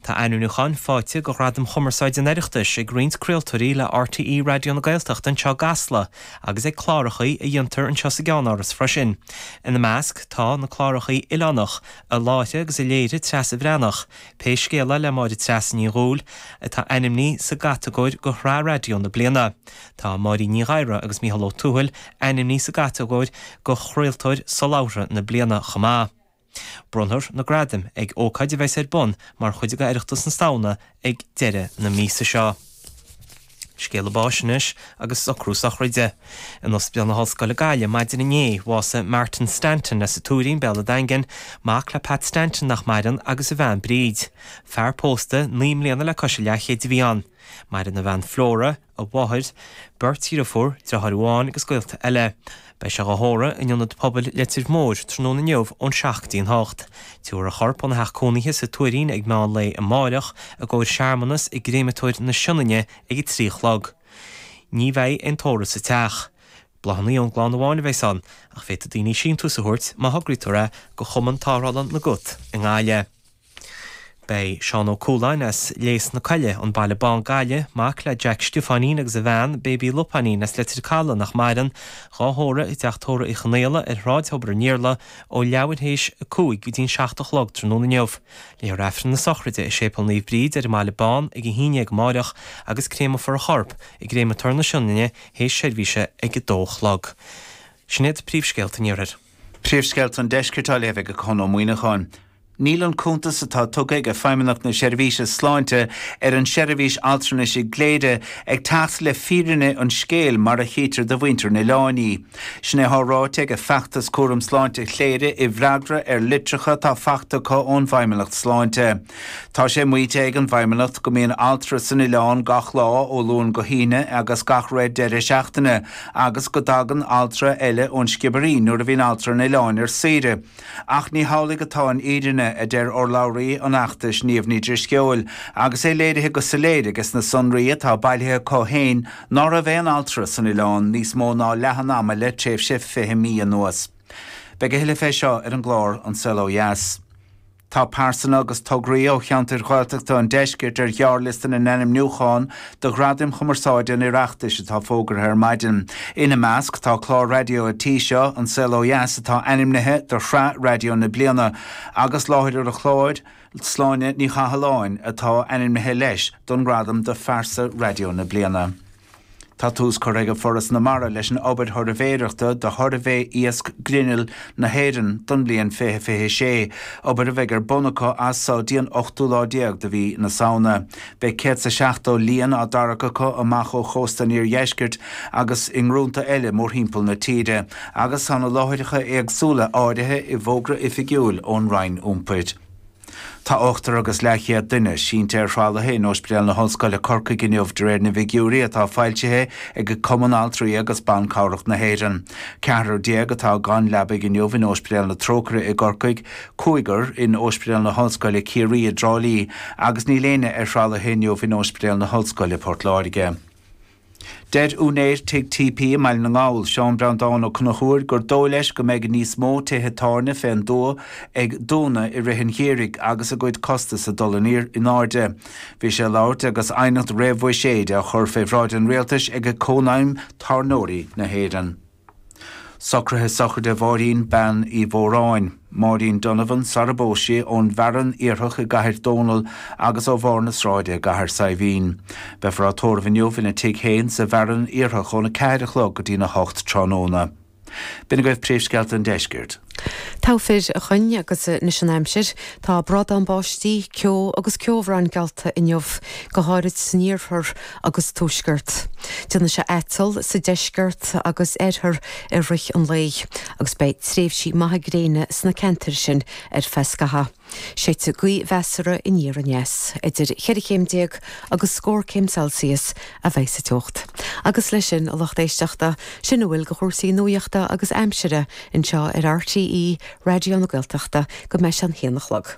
Tá ainmniúcháin faighte go Ghradaim Chumarsáide an Oireachtais ag roinnt craoltóirí le RTÉ Raidió na Gaeltachta anseo i gCasla agus ag clárachaí a dhéantar anseo sa gceannáras freisin. Ina measc tá na clárachaí oileánach, a láithrigh agus a léirigh Treasa Bhreathnach, Pé Scéal É le Máire Treasa Ní Dhubhghaill, atá ainmní sa gcatagóir go Shraith Raidió na Bliana. Tá Máirín Ní Ghadhra agus Micheál Ó Tuathail ainmní sa gcatagóir go Chraoltóir Solabhartha na Bliana chomh maith. Bronnfar na gradaim ag ócáid a bheas ar bun mar chuid d'Oireachtas na Samhna ag deireadh na míosa seo. Scéala báis anois agus socrú sochraide. In Ospidéal na hOllscoile Gaillimh maidin inné bhásaigh Martin Stanton as an Tuairín, Béal a' Daingin, mac le Pat Stanton nach maireann agus a bhean Bríd. Fear pósta naoi mbliana le cois a leathchéid a bhí ann. Maireann a bhean Flora, a mháthair, beirt dheirfiúr, deartháir amháin agus gaolta eile. Beidh sé dhá thórramh in Ionad Pobail Leitir Móir tráthnóna inniu ón 7 dtí an 8. Tabharfar a chorp óna theach cónaithe sa Tuairín ag meán lae amáireach i gcomhair searmanas i gcréamatóir na Sionainne ag a trí a chlog. Ní bheidh aon tórramh sa teach. Bláthanna ón gclann amháin a bheas ann ach féadfaidh daoine síntiús a thabhairt má thograítear é go Chumann Tarrthála na gCat i nGaillimh. Beidh Seán Ó Cualáin as Léas na Coille, An Baile Bán, Gaillimh, mac le Jack Stiofáinín agus a bhean, Baby Lupáinín as Leitir Calaidh, nach maireann, dhá thórramh i dTeach Tórraimh Uí Chonaola ar Shráid Thobar an Iarla ó leathuair théis a cúig go dtí'n seacht a chlog tráthnóna inniu. Léifear Aifreann na sochraide i Séipéal Naomh Bríd ar an mBaile Bán ag a haon dhéag amáireach agus créamofar a chorp i gCréamatóir na Sionainne théis seirbhíse ag a dó a chlog. Sin iad príomhscéalta an Iarthair. Príomhscéalta an Deiscirt á léamh ag Conn Ó Muíneacháin. Níl an cuntas atá tugtha ag Feidhmeannacht na Seirbhíse Sláinte ar an seirbhís altranais i gCléire ag teacht le fírinne an scéil mar a chítear do mhuintir an oileáin í. Sin é atá ráite ag Feachtas Cúram Sláinte Chléire i bhfreagra ar litreacha atá fachta acu ón bhFeidhmeannacht Sláinte. Tá sé maíte ag an bhFeidhmeannacht go mbíonn altra san oileán gach lá ó Luan go hAoine agus gach re deireadh seachtaine agus go dtagann altra eile ón Sciobairín nuair a bhíonn altra an Oileáin ar saoire. Ach ní hamhlaidh atá an fhírinne, a deir urlabhraí an fheachtais, Niamh Ní Dhrisceoil, agus é léirithe go soiléir aiges na sonraí atá bailithe acu féin ná raibh aon altra san Oileán níos mó ná leath an ama le tréimhse fiche mí anuas. Beidh a thuilleadh fé seo ar an gclár An Saol Ó Dheas. Tá pearsana agus tograí ó cheantair Ghaeltachta an deiscirt ar ghearrliosta na n-ainmniúchán do Ghradaim Chumarsáide an Oireachtais atá fógartha ar maidin. Ina measc tá clár raidió an tí seo, An Saol Ó Dheas atá ainmnithe do shraith raidió na bliana, agus láithreoir an chláir, Sláine Ní Chathalláin, atá ainmnithe leis don ngradam do phearsa raidió na bliana. Tá tús curtha ag Foras na Mara leis an obair shuirbhéireachta do Shuirbhé Iasc Grinnill na hÉireann don bhliain 2026, obair a bheidh ar bun acu as so dtí an 8ú lá déag de mhí na Samhna. Beidh céad is a seachtó líon á dtarrac acu amach ó chósta an Iardheiscirt agus i ngrúnta eile mórthimpeall na tíre, agus tá na láithreacha éagsúla áirithe i bhfógra oifigiúil ón Roinn Iompair. Tá ochtar agus leathchéad duine sínte ar thralaithe in Óispidéal na hOllscoile Corcaigh inniu de réir na bhfigiúirí atá foilsithe ag Cumann Altraí agus Ban Cabhrach na hÉireann. Ceathrar déag atá gan leabaig inniu in Óispidéal na Trócaire i gCorcaigh, cúigear in Óispidéal na hOllscoile Ciarraí i dTrá Lí agus níl éinne ar thralaithe inniu in Óispidéal na hOllscoile Port Láirge. Deir úinéir Tigh TP i mBaile na nGall, Seán Breandán Ó Conchúir, gur dóigh leis go mbeidh níos mó tithe tábhairne fé an dtuath ag dúnadh i rith an gheimhridh agus a gcuid costas ag dul in airde in airde. Bhí sé ag labhairt agus aighneacht réamhbhuiséid á chur fé bhráid an Rialtais ag Cónaidhm Tábhairneoirí na hÉireann. Socruithe sochraide Mháirín Bean Uí Mhóráin, Máirín Donovan, sarar phós sí, ón bhFearann Iarthach i gCathair Dónall agus ó Bharr na Sráide i gCathair Saidhbhín. Beifear á tórramh inniu ina tigh féin sa bhFearann Iarthach óna ceathair a chlog go dtína hocht tráthnóna. B'in agaibh Príomhscéalta an deiscirt. Todhchaí againn agus anois an aimsir, tá bradán báistí, ceo agus ceobhrán geallta inniu, go háirid san iarthar agus tuaisceart. Déanfaidh sé aiteall sa deisceart agus oirthear i rith an lae agus beidh tréimhsí maithe gréine sna ceantair sin ar feadh scatha. Séidfidh gaoth mheasartha aniar aneas, idir cheithre chéim déag agus scór céim Celsius, a bheidh sa teocht. Agus leis sin a lucht éisteachta, sin a bhfuil de chúrsaí nuaíochta agus aimsire anseo ar RTÉ Raidió na Gaeltachta go mbeidh sé a haon a chlog.